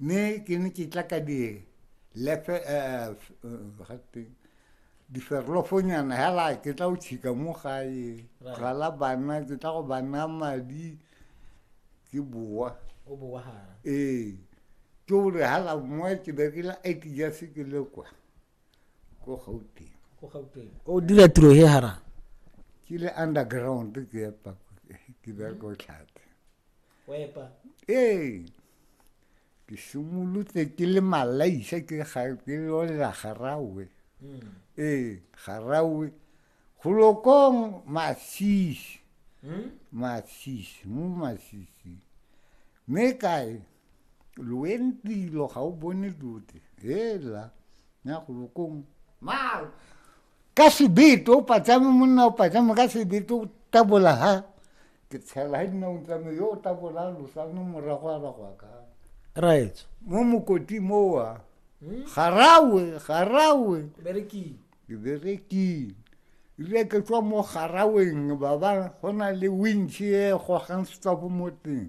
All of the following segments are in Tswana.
mme ke ne ke tla ka di lefe eh, eh, diferlofonyana hela ke tla o tšhika mo gae gala bana ke tla go bana madi ke boa ee ke ore hala moa ke berekela it ja se ke le kwa ko gauteng o dira tiro he hara ke le underground ke ya pako ke bereka o tlhate wepa ee ke simolotse ke le malaisa ke lolela garawe hmm. ee garawe golokong masisi hmm? masisi mo masisi mme kae loentilo ga o bone dote hela ya golokong maro ka sebeto o patsame monna o patsame ka sebeto o tabola ha ke tshela ha dinaong tsame yo o tabola losano morago a bagwa ka raetso mo mokoti mowa hmm? garawe garawe ke berekile ile ke tswa mo garaweng baba go na le wintšhe e gogang setsapo mo teng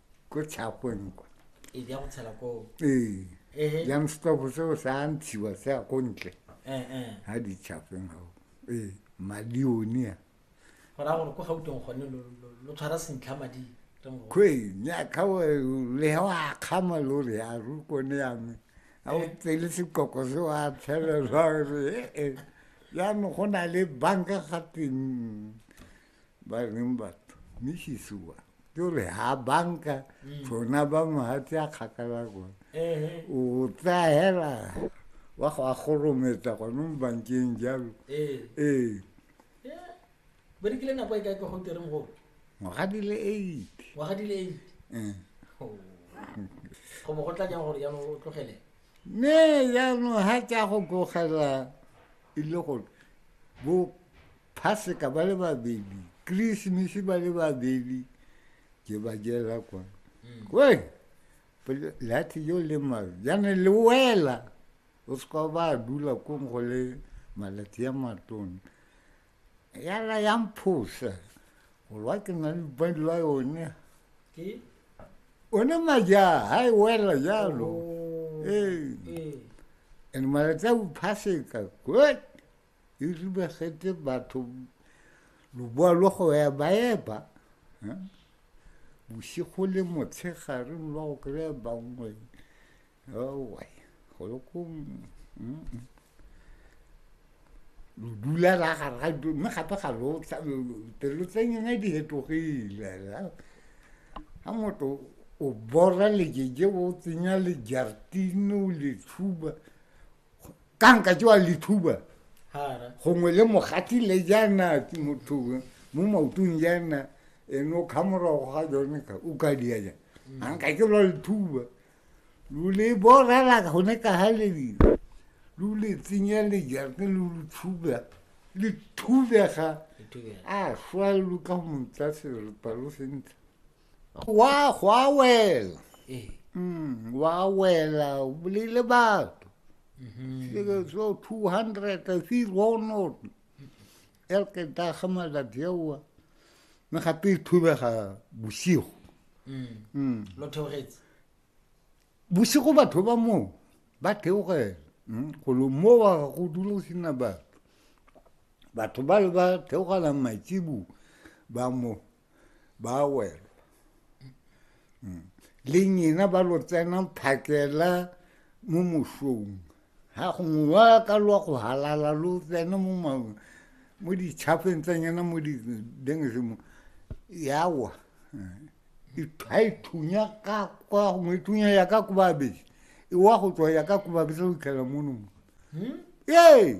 ko tshakong kwa ee ya go tshela ko ee ehe yang stop se o sa ntshiwa se a ko ntle eh eh ha di tshafeng ha ee malione a go ra gore ko gautong gone lo- lo- lo tshwara sentlha madi re mo kwe nya ka wa le ha wa khama lo re a ru ko ne ya me a o tsele se koko se wa tshela lo re eh eh ya no go na le banka ga teng ba reng batho misisi wa ke gore ha banka tsona mm. ba mohatse a kgakala kone o tsaya hela wa go a gorometsa gone mo bankeng jalo ee berekile nako e kae ka go tereng gore ngwaga di le eight ngwaga di le eight eh. oh. go bo go tla jang gore jaanong o tlogele ne jaanong ga tsa go tlogela e le gore bo Phaseka ba le babedi, Christmas ba le babedi, ke ba jela kwa. Mm. Wee, lathi yo le mabe, jane le wela, o seka ba dula kong go le malatsi a matone. Ya la ya mphosa, go lwa ke na le bandi la yone. Ke? One maja, ha e wela jalo. Oh, ee. And malatsi a bophaseka, good. e ribagetse batho loboa lwa go ya ba epa bosigo le motshegare lwa go kry-a bangwe owa go le ko lo dula ra gare ga dilo mme gape ga lo pelo tsa nyena di hetogile ga motho o bora lejeje o tsenya lejartine o le tshuba ka nka tsewa lethuba gongwe le mogati le jaana motho mo maotong jaana ene o kga morago ga jone ka o ka dia jang mm. a nka ke lwa lethuba lo le borela gone ka ga lebile lo le tsenya lejarte lo lo thuba le thubega a swa lo ka montsa serepa lo sentle Wa go a wela. Ee. Mm, wa wela o bolaile batho. Mhm. So 200 a se go no. El ke ta ga malatsi ao. Me gape e thubega bosigo. Mm. Mm. Lo theogetse. Bosigo batho ba mo ba theogela. Mm, go lo mo wa go dula sina batho. Batho ba le ba theogela matsibu ba mo. ba wela mm. le nyena ba lo tsena phakela mo mosong ga gongwe wa ka lwa go halala lo tsena mo maong mo ditšhafeng tsa nyena mo didengsemo yawa ga e thunya ka kwa gongwe e thunya ya ka ko babedi e wa go tswa ya ka ko babedi tsa go itlhela mono mo hmm? ee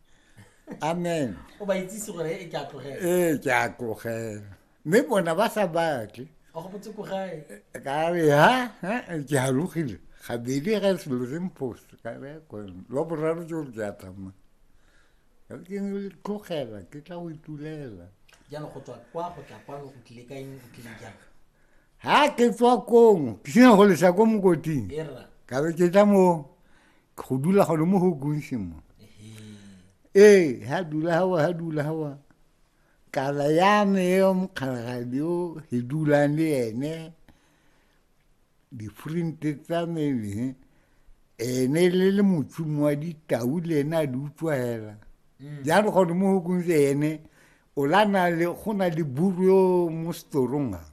amen o ba itsise gore e ke a tlogela ee ke a tlogela mme bona ba sa batle ka re ha ke halogile gabedi ga selo se mpost ka re kone lwa boraro ke gore ke a tsamaya ka ke tlogela ke tla go itulela jalo go tswa kwa go tla kwano o tlile ka eng o tlile jang ha ke tswa kong ke sena go lesa ko mokoting ka be ke tla mo go dula gone mo go kunse mo ee ha dula hawa ha dula hawa kala ya me yo mokgalagadi o e dulang le ene difrinte tsa me ene le le motsumo wa ditau le ene a di utswa hela mm. jalo gone mo go kunse ene o la na le go na le buru yo mo storong a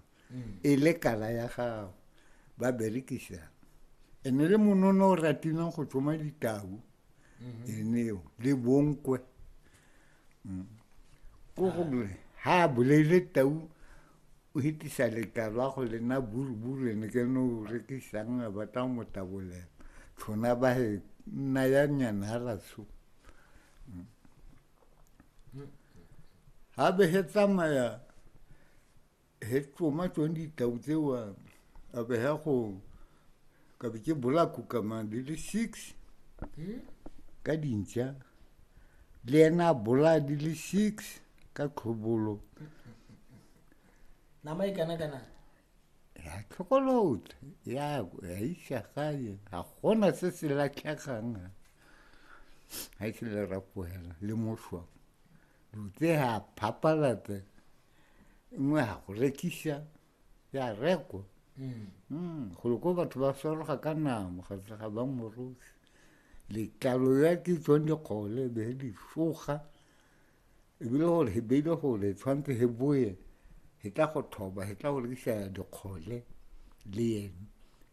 e le kala ya gago ba berekisa e ne le monono o ratileng go tsoma ditau mhm. eneo le bonkwe mm. ko gore ha a boleile tau o hitisa letalo a go lena buruburu ene ke no o rekisang a batla go motabolela tshona ba he nna ya nyana ga ratsho mm. mm. ha be he tsamaya he ke tsoma tsone ditau tsewa a be ya go ka be ke bolako kama di le six ka dintša le ena a bolaya di le six ka tlhobolo nama e kana kana ya tlhokolotla ya ya isa gae ga gona se se latlhegang ga e se le rapoela le moswa dutse ga phapalata nngwe ga go rekisa ya rekwa mm. mm, golo ko batho ba swaroga ka namo ga ga ba morosi letlalo ya ke tswang dikgole be di foga ebile gore he beile gore tshwanetse he boye he tla go thoba he tla go rekisa dikgole le ene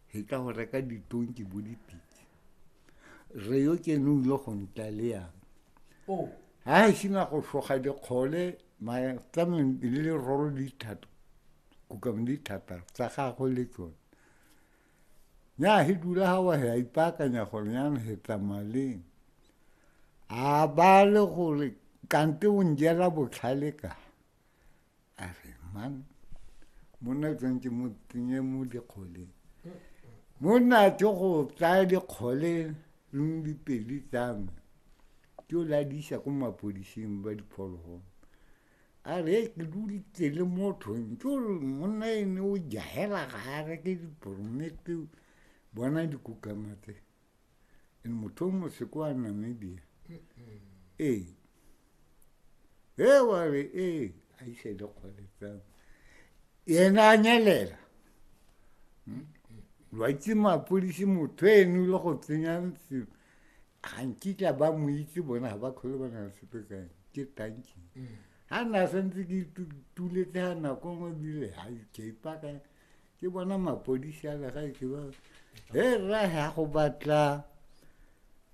he tla go reka ditonki bo dipitse re yo ke ne o ile go ntla le yang oh. ha e sena go foga dikgole Matlameng le le roro di thata kukang di thata tsa gagwe le tsone nya he dula ha wa ya ipakanya gore nya he tsamaleng a ba le gore kante o njela botlhale ka a re man monna tsantse mo tsenye mo dikgoleng monna tse go tsaya dikgole le dipedi tsa me ke o ladisa ko mapodising ba diphologolo a re ke dulitse le motho ke ore monna ene o jahela ga a reke diporomete bona dikukama tse and motho o moseko wa namibia ee e wa re ee a ise dikgole tsame yena a nyelela lwa itse mapodisi motho eno le go tsenya selo ga nkitla ba mo itse bona ga ba kgole ba na le sepe ka eng ke tanking ga nna santse ke tuletse ga nako ngwe bile ga ikeipa ka ke bona mapodisi a lega e ke ba he rra ga go batla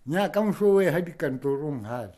nya ka moso o e ga dikantorong gale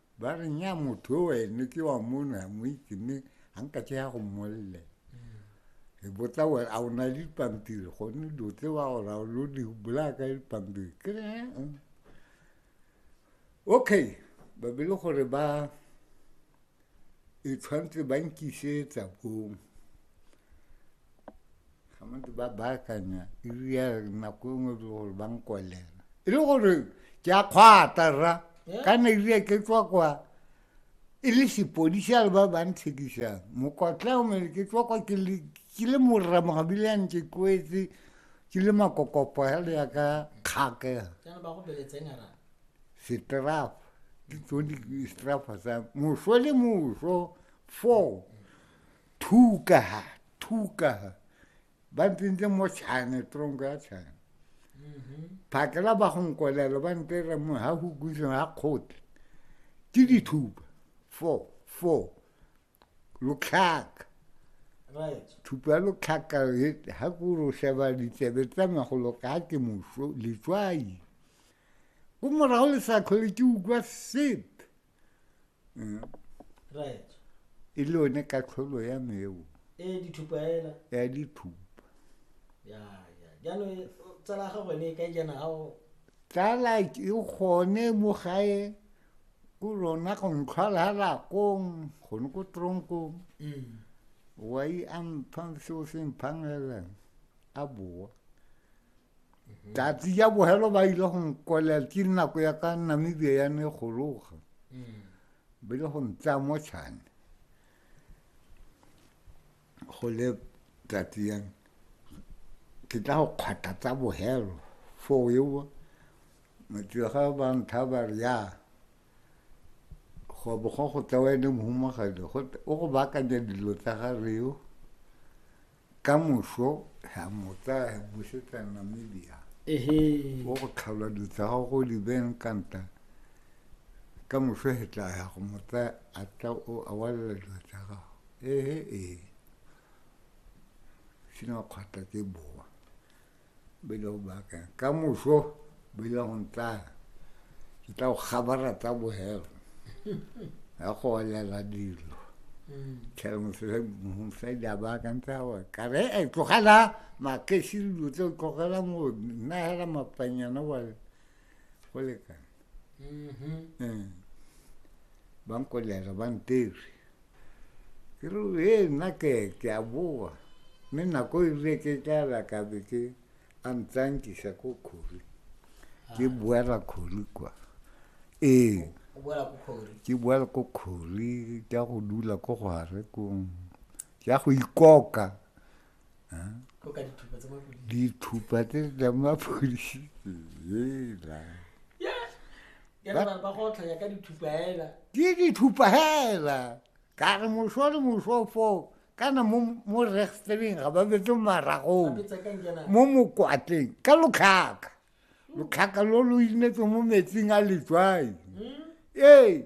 ba re nya motho o ene ke wa mono ya mo itse mme ga nka tse ya go mmolele e botla gore a o na le dipampiri gone dilo tse wa gore a lo di bolaka dipampiri ke re eh, eh. okay ba be le gore ba e tshwanetse ba nkisetsa bong gamadi ba baakanya iri ya nako e nngwe e gore ba nkolela e le gore ke a kgwata ra ka na iri ya ke tswa kwa e le sepodisi a le ba ba ntshekisang mokotla o mele ke tswa kwa ke le morramogabile ya ntse kwetse ke le makokopo ya le ya ka kgake setraf ke tsone setrafa sa moso le moso four Tukaha, tukaha. Ba ntse mo tshane, tronko ya tshane. Mm-hmm. Phakela ba gonkolelo ba ntse re mo ha go gutse ha khote. Ke dithuba. Four, four. Lokhaka. Right. Thupa lokhaka ha go ro sheba ditsebe tsa magolo ka ke moso letswai. Go morago le sa tlhole ke utlwa sepe. Eh. right e le one katlholo ya me eo e dithupa ela ya dithupa ya ya jaanong e- tsala ga gone e ka jana ga o tsala ke gone mo gae ko lona go ntlhwala lakong gone ko tronkong Mm. wa i a mphang seo se mphang elang a boa mm-hmm. tatsi ya bogelo ba ile go nkolela ke nako ya ka namibia ya ne gologa mm. ba ile go ntsaya mo tšhane go le tatsi yang ke tla go kgwata tsa bogelo foo eo motega ba ntha ba re ya go bo go go tsewa ene mohumagadi o go baakanya dilo tsa ga reo ka moso ra mo tsaya re busetsa namibia ehe o go tlhalwa dilo tsa gago go di beng kanta ka moso he tla ya go mo tsaya a tla o a walela dilo tsa gago ehe ee sena kgwata ke boa ba ile go baakanya ka moso ba ile go ntlaya ke tla go kgabara tsa bohelo ya go olela dilo mosadi a baakantse a gore kare e tlogela makesi dilo tse o tlogela mo nna hela mapanyana gore go lekana um ba nkolela ba nteri ke re e nna ke ke a boa mme nako e rile ke tlala ka be ke a ntsankisa ko kgori ke boela kgori kwa ee ke boela ko kgori ka go dula ko gare kong ya go ikoka dithupa tse tla mapodisi ela ke dithupa hela ka re moso le moso foo kana mo rexteleng ga ba betse maragong mo mokwatleng ka lotlhaka lotlhaka lo lo inetse mo metsing a letswai hmm? ee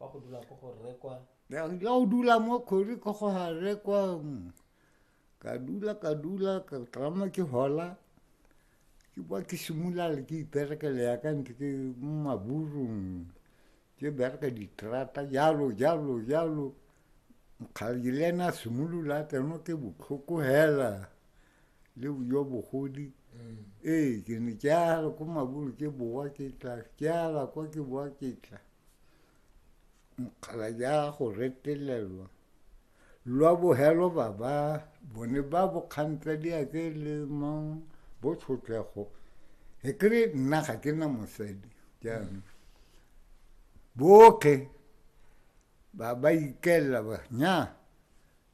wa go dula ko go rekwa ya go dula mo kgori ko go ga rekwa mm. ka dula ka dula ka tlama ke hola ke ba ke simolale ke iperekele ya ka ntse ke mo maburung ke bereka diterata jalo jalo jalo mokgadi le ene a simolola a tseno ke botlhoko hela le jo bogodi mm. ee ke ne ke ala ko mabolo ke bowa ke tla ke ala kwa ke bowa ke tla mokgala ja go retelelwa lwa bogelo baba bone ba bokgantsa di a ke le mang bo tshotlego e kry nna ga ke na mosadi jaanong mm. botlhe ba ba ikelela ba nya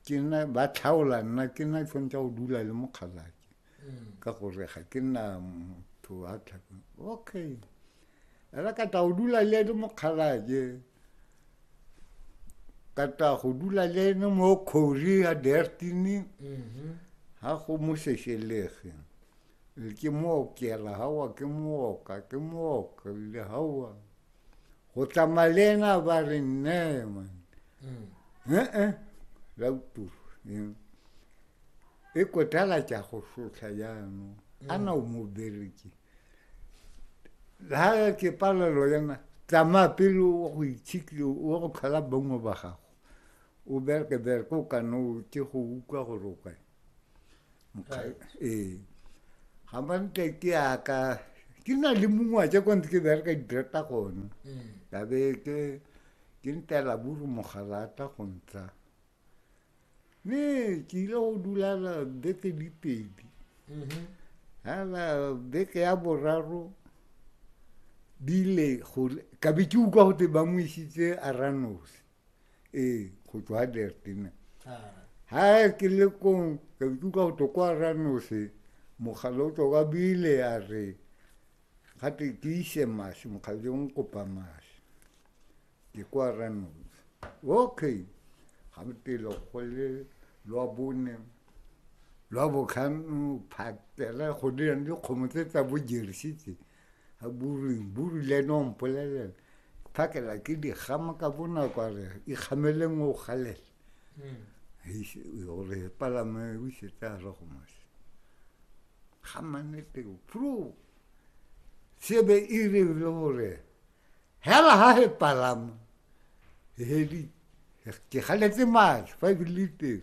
ke nna ba tlhaola nna ke nna ke tshwanetse go dula le mokgalake mm. ka gore ga ke nna motho a tlhako okay era ka tla go dula le ene mokgalake ka tla go dula le ene mo kgori ya dertini mm-hmm. ga go mo sešelege ke mook kela gawa ke mooka ke mook ebile gawa go tsamaya le ena ba re nne man mm. ee la uturu e kotala tša go sotlha jaanong mm. ana o mo bereke ga ke palelo yena tsamaya pele o go itshikile o go tlhola bongwe ba gago o bereke bereke o ka no ke go utlwa gore o kae ee ga mantle ke yaka ke na le mongwa tse kwantse ke bereka didireta gone mm. ya be ke ke ntela buru mogalata go ntsha mme ke ile go dulala beke di pedi mm-hmm. ala beke ya boraro di ile ka be ke utlwa gote ba mo isitse a ranosi ee go tswa adertena ha ke le kong ka ikutlwa go tlo kwa ranose mogala o tswa ka bile a re gate ke ise mase mokgadi o kopa mase ke kwa ranose okay ga motelo go le lwa bone lwa botlhano phatela go dirang dikgomo tse tsa bojersitse a buring buri le ene o mpolelela phakela ke dikgama ka bonako a re ikgameleng o galela gore palame o isetse a re go mose ga mannete pro sebe e rile gore hela ga e palama hedi ke galetse matlho fa ebile teng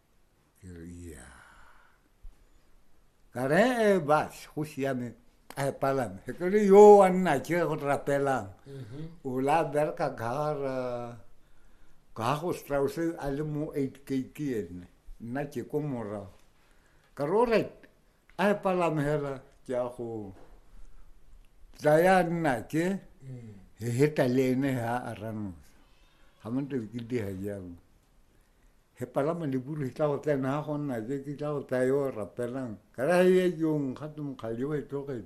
Ia. Ka re e bas go siame a e palame. Ke re yo wa nna ke go rapelang. Mhm. O la berka gara ka go Strauss a le mo 8 gate ene. Nna ke ko morago. Ka re alright a e palame hela ke a go tsaya nna ke mm. he heta le ene ha a ranosa. Ha mo ntse ke di ha jalo. He palama liburu he tla go tsena ha go nna je ke tla go tsaya yo rapelang ka ra ye jong ga tse mokgale yo e tlogele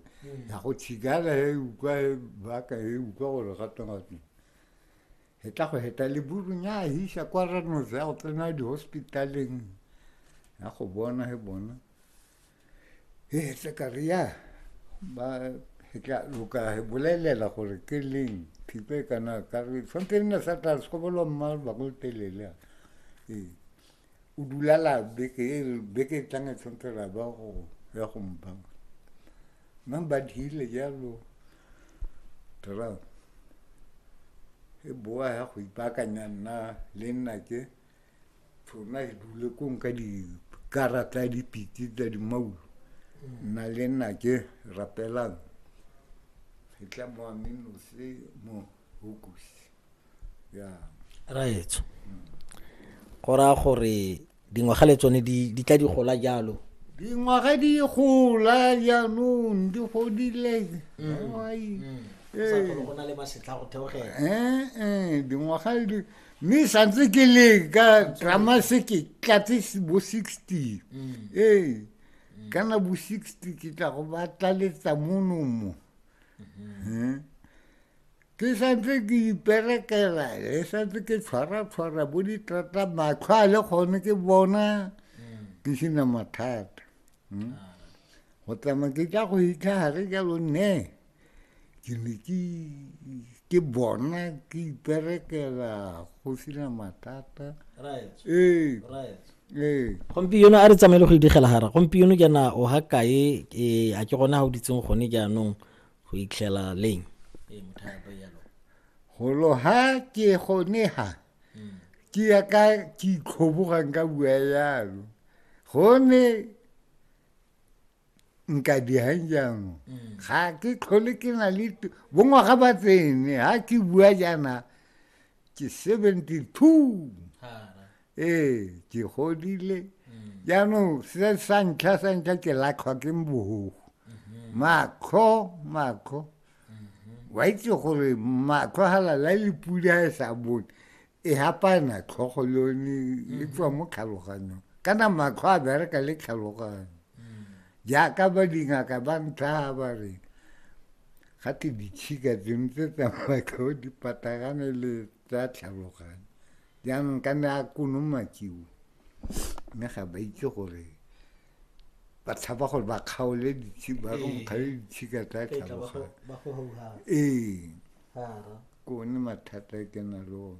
ya go tshigala he utlwa he baka he utlwa gore ga teng ga teng he tla go heta liburu nya hisa kwa ranoze ya go tsena di-hospitaleng ya go bona he bona e tla ka re ya ba e tla loka e bolelela gore ke leng thipe kana ka re tshwanetse nna sa tla sekobolo mma ba go telele ee o dulala beke e beke e tlang e tshwanetse ra ba go ya go mpa mma ba dile jalo tara e boa ya go ipakanya nna le nna ke tshona e dule kong ka dikarata ya dipitse tsa dimaulo nna le nna ke rapelang e tla mo amenose mo hokusi ya raetso go raya gore dingwaga le tsone di tla di gola jalo dingwaga di gola jaanong di godile mm. Mm. Eh. go na le masetlha go theogela eh, eh, dingwaga mme santse ke leka drama se ke tlatse bo sixty mm. ee kana bo sixty ke tla go ba tlaletsa monomo mm-hmm. ke santse ke iperekela le santse ke tshwara-tshwara bo ditrata matlho a le gone ke bona mm. ke sena mathata hmm? ah. go tsamaya ke tla go itlha gare jalo nne ke ne ke bona ke iperekela go sena mathata ee ee gompieno a re tsamaile go idigela gara gompieno jaana o ga kae ee, a ke gona ga o ditseng gone jaanong go itlhela leng ee, golo ha ke gone ha hmm. ke ya ka ke itlhobogang ka bua yalo gone nka dijang jaanong mm. ga ke tlhole ke na le bongwaga ba tsene ga ke bua jaana ke seventy two ee ke godile mm. jaanong se sa ntlha sa ntlha ke latlhwa ke mbogo mm-hmm. makgo makgo mm-hmm. wa itse gore makgo ga lala le pula e sa bone e hapana tlhogo le yone e mm-hmm. tswa mo tlhaloganyong kana matlho a bereka le tlhaloganyo jaaka ba dingaka ba ntlha ba re ga te ditshika tseno tse tsa matlho di patagane le tsa tlhaloganyo jaanong ka ne a konomakiwa mme ga ba itse gore ba tshaba gore ba kgaole ba kgaole ditshika tsa tlhaloga ee ke one mathata e ke na le one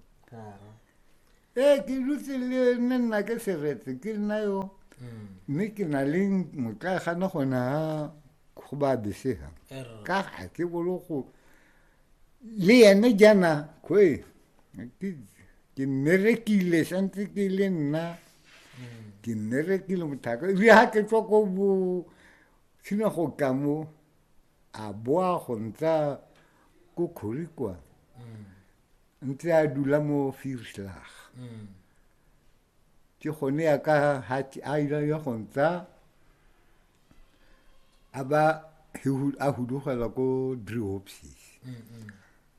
ee ke dutse le ne nna ke seretse ke nna yo mm. mme ke na le motlaegana gona go ba besega ka ga ke bolo go Liya ni kya na kuwe, ki nere ki le, shanti ki le na, ki nere ki le mutaka, li ha ke tswa ko bu china go ka mo, a boa go ntsa ko khori kwa, ntse a dula mo Vierslag. ke gone ya ka hati a ile ya go ntsa a ba a hudugela ko driopsis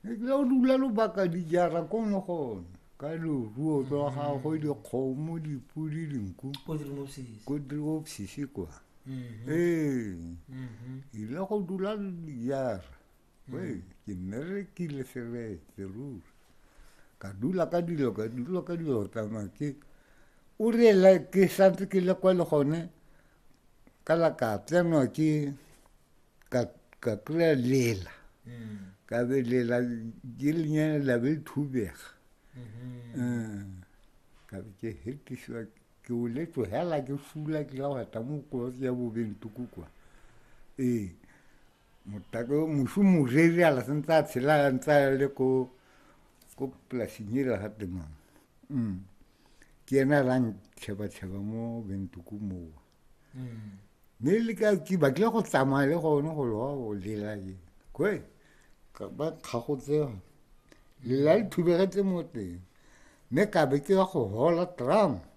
ebile o dula lobaka dijara ko ne gone ka leruo tsa gagwe dikgomo dipodi dinku ko driopsis kwa ee ile go dula dijara Wei, ke nne re kile seretse ruri ka dula ka dilo ka dula ka dilo tsamaya ke o reela ke santse ke le kwa le gone ka la ka tsenwa ke ka ka kry-a lela ka be lela ke lenyana la be thubega ka be ke hetisiwa ke o le tlogela ke fula ke la wata mo kolotse ya bobentoko kwa ee Motako yo mošu moreri a la sentse a tshela a ntse a le ko ko polasing ela ga temang mm. ke ena a lang tšheba-tšheba mo bentuku mowa mm. mme le ka ke batlile go tsamaya le gone go loa go lela ke kwe ba kgagotse lela le thubegetse mo teng mme ka be ke ya go hola tram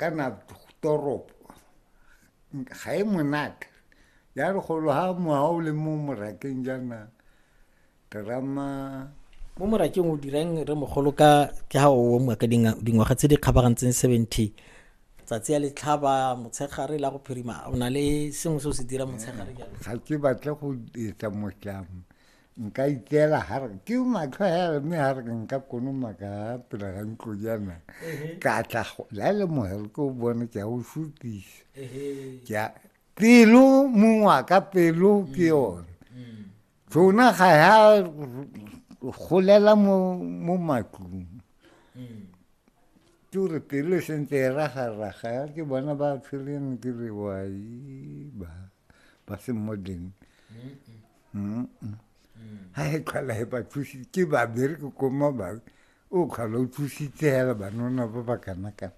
kana toropo ga e monate ya re golo ha moa o le mo morakeng jaana terama mo morakeng o dirang re mogolo ka ke ha o moa ka dingwaga tse di kgabagantseng seventy tsatsi ya letlhaba motshegare la go phirima o na le sengwe se o se dira motshegare jalo ga ke batle go etsa motlamo nka itseela ga re ke matlho a yare mme ga re ke nka konoma ka pela ga ntlo jana ka tla la le mogere ke o bone ke a o sutisa ke pelo mong wa ka pelo ke mm. yone mm. tsona ga ya golela mo mo matlong mm. ke gore pelo e sentse e ragaraga ya ke bona ba tshwereng ke re wai ba ba se modeng mm. ga e tlhola e ba thusitse ke babereke ko mabake o tlhola o thusitse fela banona ba ba kana-kana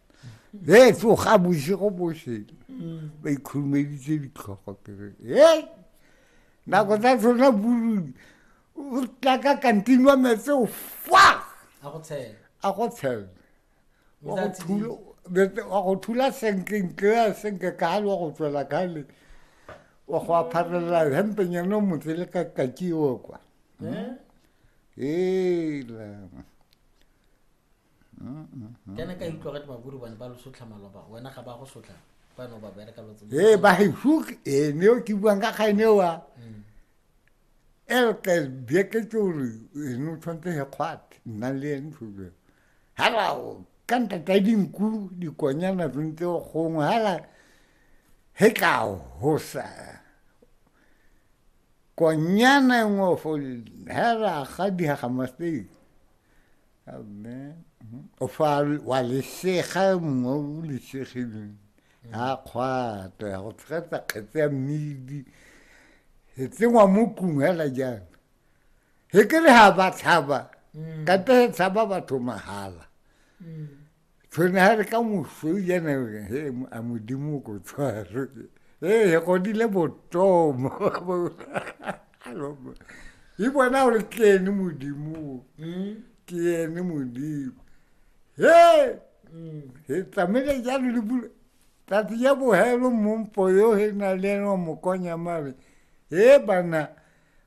e tsoga bosigo bosele ba ikhurumeditse ditlhogo kere e nako tsa tsona buludi o tla ka kantini wa metse o fa a go tshela wa go thula wa go thula senke ntle a senke ka hali wa go tswela ka hali wa go apharelela hempenyana o motse le ka kakiwo kwa hmm? ela hmm, hmm, kana ka utlwa gate baburu bane ba lo sotlha maloba wena ga ba go sotlha bano ba bereka lotse ee ba he hook ee ne o ke buang ka kgaene wa elke bjeketse gore ene o tshwanetse he kgwate nna le ene tshube halao ka nta ta dinku dikonyana tsontse gongwe hala he tla hosa konyana e nngwe fo hela ga dihaga masteng amen o fa wa lesega e mongwe o lesegileng ya kgwata ya go tshegetsa kgetse ya mmidi e tsengwa mo tlung hela jang he ke re ha ba tlhaba mm. ka te tshaba batho mahala mm. tshwene ha re ka moso yene he a modimo ko tshwaro ee he godile botomo e bona gore ke ene modimo mm. ke ene modimo he he tlamele jalo le bula tsatsi ya bohelo mompo yo he na le eno mokonya mare he bana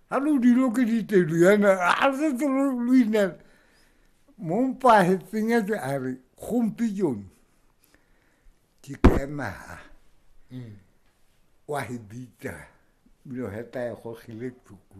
Ha lo dilo ke ditelo yana a se tselo lo inela mo mpa he tsenyetse a re gompi jone ke kemaha mm. wa he bitsa bilo heta e gogile tsuku